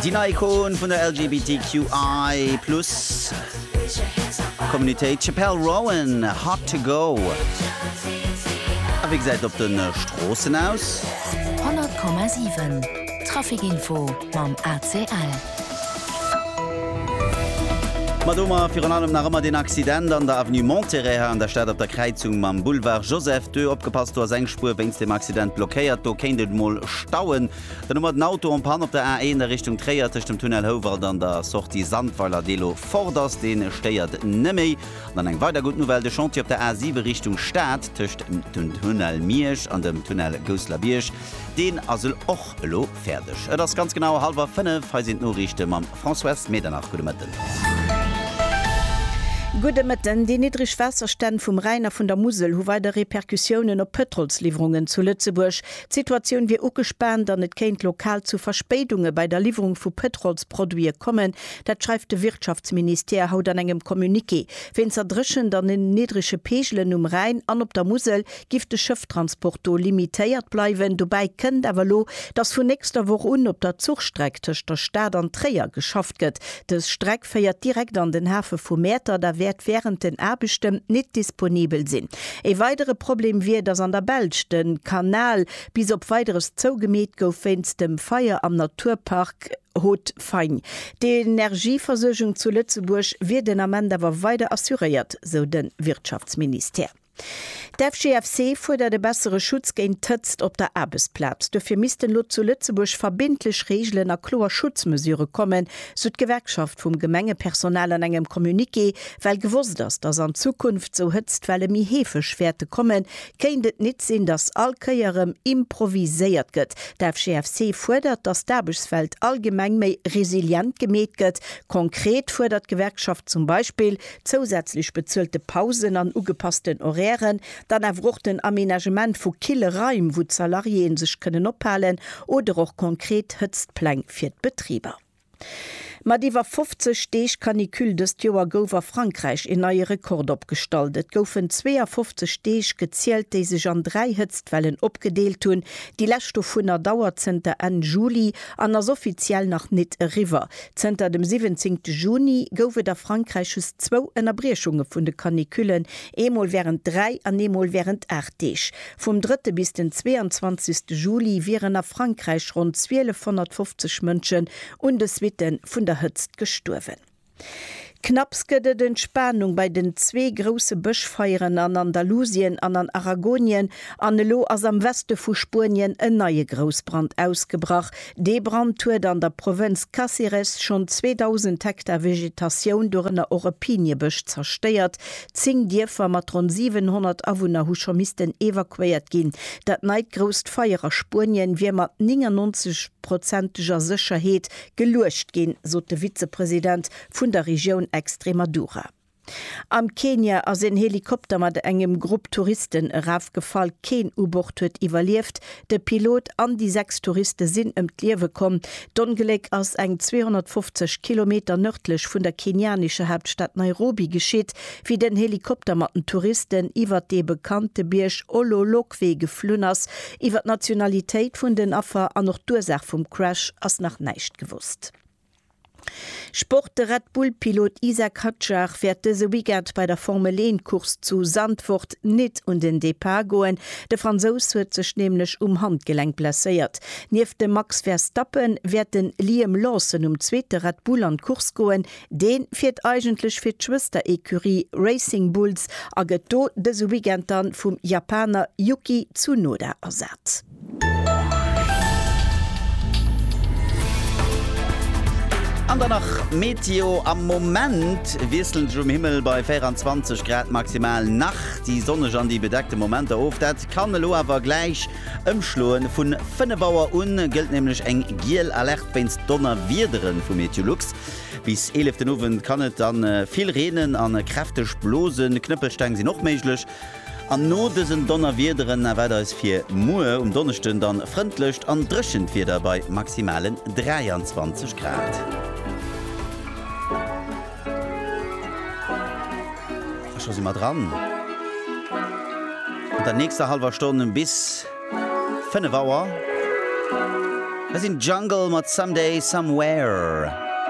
Déi nei Ikon vun der LGBTQI plus Communitéit, Chappell Roan, Hot to go. A wéi gesäit et op de Stroossen aus? 100,7 Trafikinfo mam ACL. Ma domat virun allem nach ëmmer deen Accident an der Avenue Monterey hei an der Stad op der Kräizung mam Boulevard Joseph ii. Opgepasst, do ass eng Spuer wéinst dem Accident blockéiert. Do kéint et mol stauen. Den Nummer den Auto en Panne op der A1 a Richtung Tréier tëscht dem Tunnel Houwald an der Sortie Sandweiler, dee lo fort ass, deen stéiert net méi. An dann eng weider gutt Nouvelle, de Chantier op der A7 Richtung Stad tëscht dem Tunnel Miersch an dem Tunnel Gousselerbierg, deen ass och elo fäerdeg. Et ass ganz genau halwer 5, hei sinn d'Noriichte mam Françoise Medernach. Gudde Mëtten. Gudde Mëtten. Déi niddreg Waasserstänn vum Rhäin a vun der Musel hu weider Repercussiounen op d'Pëtrolsliwwerungen zu Lëtzebuerg. D'Situatioun wier ugespaant an et kéint lokal zu Verspéidunge bei der Liwwerung vu Pëtrolsproduite kommen. Dat schreift de Wirtschaftsministère haut an engem Communiqué. Wéinst der Dréchent an den niddrege Peegelen um Rhäin an op der Musel giff de Schëfftransport do limitéiert bleiwen. Dobäi kënnt awer elo, dass vun nächster Woch un op der Zuchstreck tëscht der Stad an Tréier geschafft gëtt. Dës Streck féiert direkt an den Hafe vu Mäertert a wäert wärend den Aarbechte nit disponibel sinn. Ee weidere Problem wier, datt an der Belsch de Kanal bis op Weideres zougemeet gouf wéinst dem Feier am Naturpark Haut-Fagne. D'Energieversuergung zu Lëtzebuerg wier den Ament awer weider assuréiert, sou de Wirtschaftsministère. D'FGFC fuerdert e bessere Schutz géint d'Hëtzt op der Aarbechtsplaz. Duerfir missten elo zu Lëtzebuerg verbindlech Reegelen a kloer Schutzmesure kommen, sou d'Gewerkschaft vum Gemengepersonal an engem Communiqué. Well gewosst ass, datt an Zukunft sou Hëtztwelle méi heefeg wäerte kommen, kéint et nit sinn, datt all Kéier erëm improviséiert gëtt. D'FGFC fuerdert, datt d'Aarbechtswelt allgemeng méi resilient gemeet gëtt. Konkret fuerdert d'Gewerkschaft zum Beispill, zousätzlech bezuelte Pausen an ugepassten Horairen, dann awer och den Aménagement vu kille Raim, wou d'Salariéeë sech kënnen ophalen, oder och konkret Hëtztpläng fir d'Betriber. Mat iwwer 50 Deeg Canicule dëst Joer gouf a Frankräich een neie Rekord opgestallt. Et goufen 52 Deeg gezielt, déi sech an dräi Hëtztwellen opgedeelt hunn. Déi lescht dovunner dauert zënter Enn Juli an ass offiziell nach nit eriwwer. Zënter dem siwwenzéngte Juni gouf et a Frankräich just zwou Ënnerbriechunge vun de Canicullen, eemol wärend dräi an eemol wärend aacht Deeg. Vum drëtte bis den zweeanzwanzegste Juli wieren a Frankräich ronn 1250 Mënschen un de Suitte vun der Hëtzt gestuerwen. Knapps gëtt et Entspanung bei den zwee grousse Bëschfeieren an Andalusien an an Aragonien, an elo ass am Weste vu Spuenien en neie Groussbrand ausgebrach. Dee Brand huet an der Provënz Cáceres schonn 2.000 Hektar Vegetatioun, dorënner och e Piniebësch, zerstéiert. Zéng Dierfer mat ronn 700 Awunner hu scho missten evakuéiert ginn. Dat neit grousst Feier a Spuenien wier mat 99 prozenteger Sécherheet geluecht ginn, sot de Vizepresident vun der Regioun Extremadura. Am Kenia ass een Helikopter mat engem Grupp Touristen erafgefall. Keen u Bord huet iwwerlieft. De Pilot an déi sechs Touriste sinn ëm d'Liewe komm. D'Ongléck ass eng 250 Kilometer nërdlech vun der kenianescher Haaptstad Nairobi geschitt, wéi den Helikopter mat den Touristen iwwer dee bekannte Bierg Ololokwe geflunn ass. Iwwer d'Nationalitéit vun den Affer an och d'Ursaach vum Crash ass nach näischt gewosst. Sport, De Red Bull Pilot Isack Hadjar wäert dëse Weekend bei der Formel 1 Course zu Zandvoort nit un den Depart goen. De Fransous huet sech nämlech um Handgelenk blesséiert. Nieft dem Max Verstappen wäert de Liam Lawson um zweete Red Bull an d'Course goen. Dee fiert eigentlech fir d'Schwëster-Ecurie Racing Bulls a gëtt do dëse Weekend dann vum Japaner Yuki Tsunoda ersat. An dann nach Meteo, Am Moment wiesselend sech um Himmel bei 24 Grad maximal nach déi sonneg an déi bedeckte Momenter of. Dat kann elo awer gläich ëmschloen. Vu 5 Auer un gëllt nämlech eng giel Alerte wéinst Donnerwiedere vu Meteolux. Bis 11 den Owend kann et dann vill reenen a kräfteg blosen. Knëppelsteng sinn och méiglech. An no dësen Donnerwiederen erwaart eis fir muer um Donneschden dann frëndlecht an dréchent Wieder bei maximalen 23 Grad. A scho si mer dran mat der nächster hallwer Stonn bis 5 Auer. Hei sinn d'Jungle mat Someday Somewhere.